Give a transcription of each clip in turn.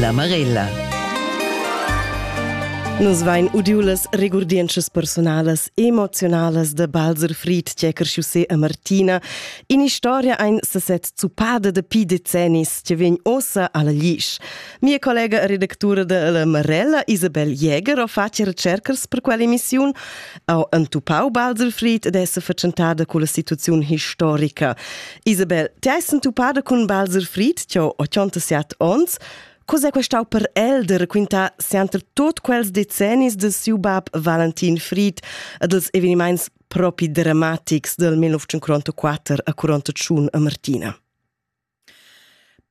La Marella. Nus vain udiu las regurdientschas personalas emozionalas de Balzer Fried, Tschecker Chaussé e Martina, in historia ein seset zupada de pi decennis, che vegn ossa alla Lisch. Mia collega e redactura de La Marella, Isabel Jäger, ho fatg recercas per quella emissiun ha entupau Baselfried ed essa fatschentada culla situaziun historica. Isabel, ti hai entupada cun Baselfried, ti ho 87 ons, Cos'è questau per el de raquintar sempre tot quels decennis de siu bab Valentin Fried e dels eveniments propi dramatics del 1944 a Coronta Tschun a Martina?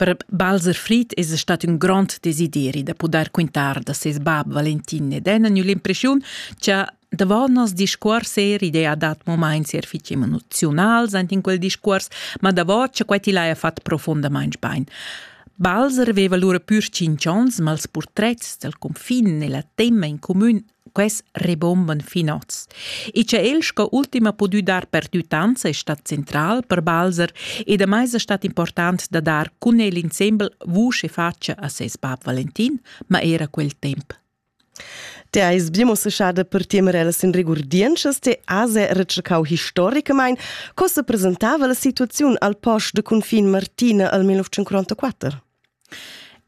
Per Balzer Fried esa stat ün grond desideri da pudair quintar da seis bap Valentin ed Enna gnü l'impreschiun cha davo nos discuors eir idea dat momaints eir fich emoziunals aint in quel discuors, ma davo cha quai til haja fat profondamaing bain. Balzer veva lura pür tschinch ons, ma ils purtrets dal cunfin e la temma in cumün Quels rebomban fin oz. E cha el sco ultim ha pudü dar perdüttanza es stat central per Balzer e damai es stat important da dar cun el insembel vusch e faccia a ses bab Valentin, ma era quel temp. Te eis bimossechada per temerela sin regurdientschas te ase retschecau historicamain co se presentava la situaziun al post de confin Martina al 1944?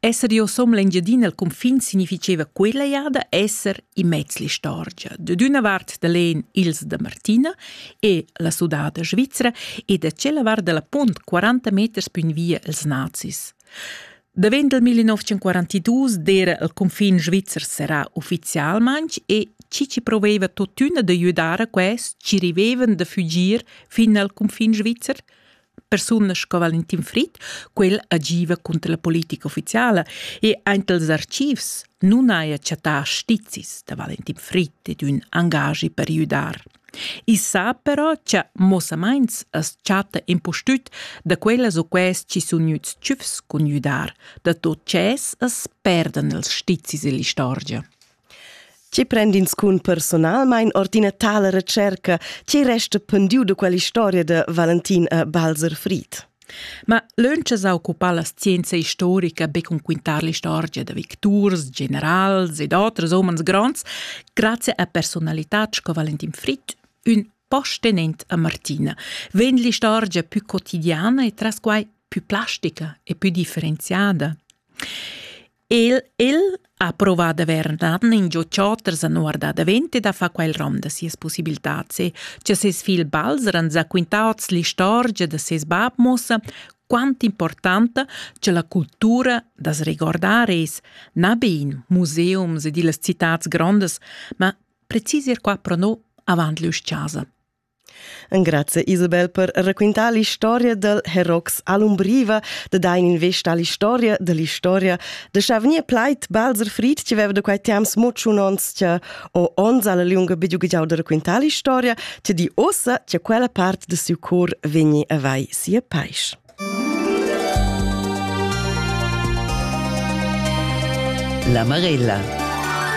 Esser io som l'Engiadina al cunfin significheva quella jada esser immez l'istorgia, da d'üna vart da l'En ils da Martina e la sudada svizra e da tschella vart da la punt 40 meters pün via als nazis. Davent del 1942 d'era il cunfin svizzer serrà ufficialmaing e chi ci proveva tuottüna da güdar a quest ci rivevan da fügir fin al cunfin svizzer – persunas sco Valentin Fritt, quel agiva cunter la politica ufficiala e aint els archivs nun haja chattà stizis da Valentin Fritt ed ün angagi per jüdar. I sa però cha mossamaints as chatta impustüt da quellas o quels chi sun gnüts tschüfs cun jüdar, da tot tschess as perdan els stizis ill'istorgia. Tgi prend inscun personalmein ord ina tala recerca? Tgi resta pendiu de quell'istoria de Valentin e Balzer Fried? Ma lönch sa occupar la scienza historica be cun quintar l'istorgia da victurs, generals ed oters homens gronds, grazie a personalitats co Valentin Fried, ün postenent a Martina, vegn l'istorgia più quotidiana e tras quai più plastica e più differenziada. El, el ha provà d'avair naden ingio ch'oters han guardà davent e da far quel rom da sias pussibiltats e cha seis figl Balzer han zaquintà hoz l'istorgia da seis bap muossa quant importanta cha la cultura da's regordar es, na be in museums ed illas citats grondas, ma precis ir qua pro no avant l'üs-chasa. Engrazia Isabel per raquintar l'istoria del Herox Alumbriva, da dar investa all'istoria dell'istoria, da scha vgnir plaid Balzer Fried, che veva da quei temps mo tschun ons, che o ons alla lunga bidugigiau da raquintar l'istoria, che di ossa che quella part de siu cor vegni a vai sia paisch. La Marella